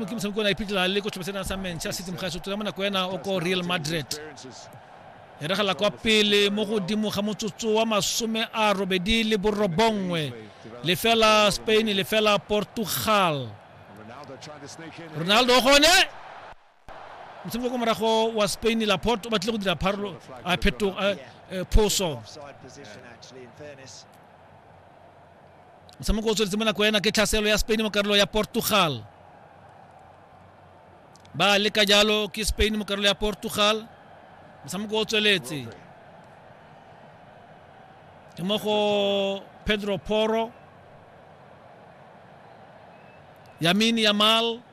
kimsa mkona ipitla le ko tshobesena sa manchester city mokgaso tula mona ko ena o ko real madrid e regela kwa pele mo godimo ga motsotso wa masome a robedi le borobongwe lefela spain lefela portugal ronaldo gone motshameko ko morago wa spain laport o batlile go dira pharolo a phetogo eh, phoso motshameko o tsweletse mo nako ena ke tlhaselo ya spain mo karolo ya portugal ba leka jalo ke spain mo karolo ya portugal motshameko o tsweletse ke mo go pedro poro yamini yamal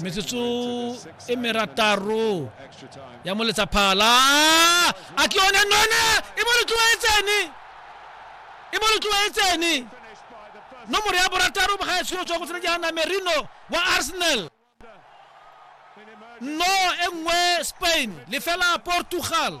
metsotso e merataro ya mo letsaphala a ke yone none e mo letloetsene e mo letloetsene nomoro ya borataro ga e tshwelo tswa go tsena ke hana merino wa arsenal no e nngwe spain lefela portugal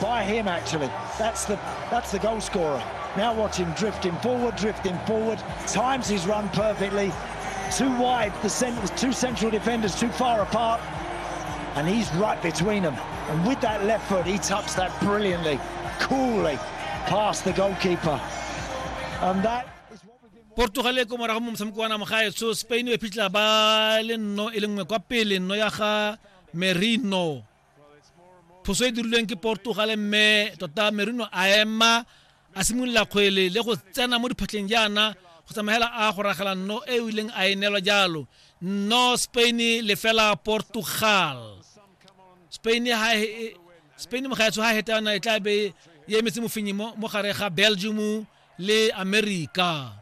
By him, actually. That's the, that's the goal scorer. Now watch him drifting forward, drifting forward. Times his run perfectly. Too wide, the cent two central defenders too far apart. And he's right between them. And with that left foot, he tucks that brilliantly, coolly, past the goalkeeper. And that... portugal e ko morago mo motshameko wa namagaetso spain e phitlha ba le nno e le nngwe kwa pele nno ya ga merino phoso e dirilweng ke portugal mme tota merino a ema a simolola kgwele le go tsena mo diphatlheng jaana go tsamaela a go ragela nno e o ileng a e neelwa jalo nno spain lefela portugal spain ha e, e, spain mogaetsho ha e heta yona e tla be e emetse mofenyi mo gare ga belgium le america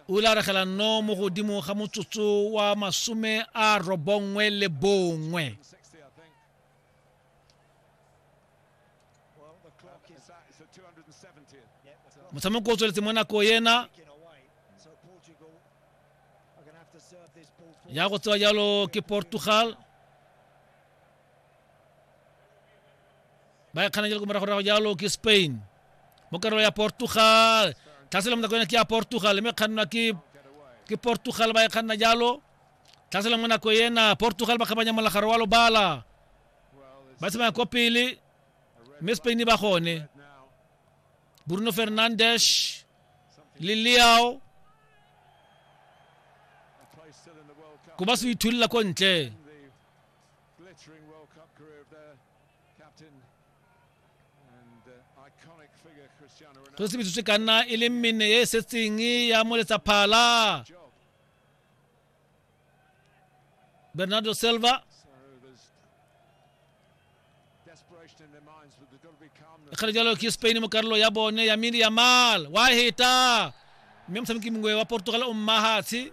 o ile a re gelanno mo godimo ga motsotso wa masome a robongwe le bongwe motshameko o tsweletse mo nako ena ya go tsewa jalo ke portugal ba e kganakele ko moragorago jalo ke spain mo karolo ya portugal tlhaselong nako ena ke ya portugal mme kgannwa ke ke portugal ba e kganna jalo tlhaselong mo nako ena portugal ba kgabanya molagaro wa lobala ba tsamaya ko pele mme spain ba gone bruno fernandes le leao ko ba se ithulela ko ntle Glittering World Cup career of their captain and uh, iconic figure Cristiano Ronaldo. tosi metsotso e ka nna e le mene e e setseng ya moletsa phala Job. bernardo silva So there's desperation in their minds, but there's got to be calmness. kgale jalo ke spain mo karolo ya bone ya mini ya mal wa heta mme motshameki mongwe wa portugal o mmahatshe